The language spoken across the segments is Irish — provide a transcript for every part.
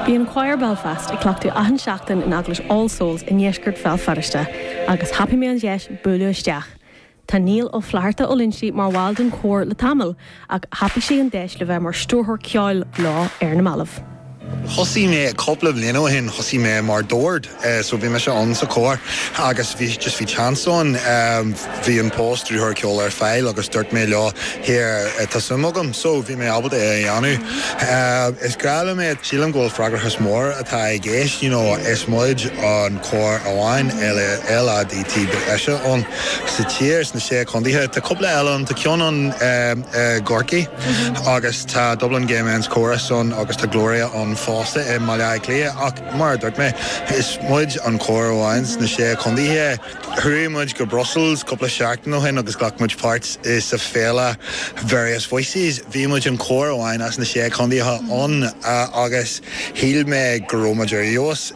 Bíonn Quire Belfast ag cleachtadh achan seachtain in Eaglais All Souls i ndeisceart Bhéal Feirste agus thapaigh mé an deis buaileadh isteach. Tá Niall Ó Flatharta Ó Loinsigh mar bhall den chór le tamall ach thapaigh sé an deis le bheith mar stiúrthóir ceoil leo ar na mallaibh. Thosaigh mé cúpla bliain ó shin, thosaigh mé mar dord. so bhí mise ann sa cór agus bhí just bhí chance ann bhí an post stiúrthóir ceoil ar fáil agus dúirt mé leo here tá suim agam so bhí mé ábalta é a dhéanamh is grá liom é sílim go bhfuil freagrachas mór atá i gceist you know is muid an cór amháin LADT breise ann sa tír sna sé contaetha tá cúpla eile ann tá ceann ann i gCorcaigh agus tá Dublin Gay Men's Chorus ann agus tá Gloria ann fosta i mBaile Átha Cliath ach Mar a dúirt mé, is muid an cór amháin sna sé contaetha. Chuaigh muid go Brussels cúpla seachtain ó shin agus ghlac muid páirt sa féile Various Voices. Bhí muid an cór amháin as na sé contaetha ann agus shíl mé go raibh muid ar fheabhas.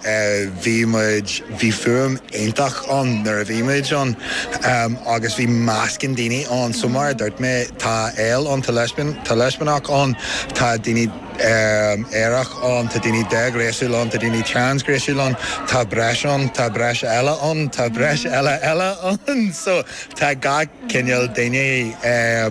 Bhí muid, bhí fuaim iontach ann nuair a bhí muid ann agus bhí meascán daoine ann. So mar a dúirt mé, tá Ail ann, tá Leispiach ann, tá daoine. aerach ann, tá daoine déghnéasúil ann, tá daoine trasghnéasúil ann, tá breis ann, tá breis eile ann, tá breis eile eile ann. So, tá gach cineál duine,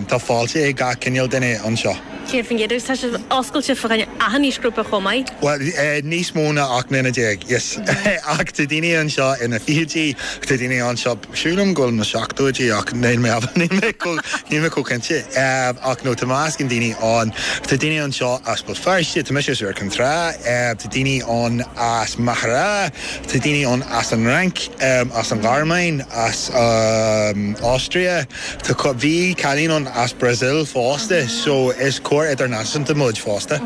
tá fáilte ag gach cineál duine anseo. 100%, agus tá sé oscailte fá choinne achan aoisghrúpa chomh maith. Bhuel, níos mó ná 18 mbliana, yes. Ach tá daoine anseo ina bhfichidí, tá daoine anseo Sílim go bhfuil na seachtóidí ach níl mé níl mé chomh cinnte. Ach no, tá meascán daoine ann. Tá daoine anseo as Béal Feirste, tá mise as Iúr Cinn Trá, tá daoine ann as Machaire Rátha, tá daoine ann as an Fhrainc, as an Ghearmáin, as an Austria, tá cur, bhí cailín ann as Brazil fosta, so is cór idirnáisiúnta muid fosta.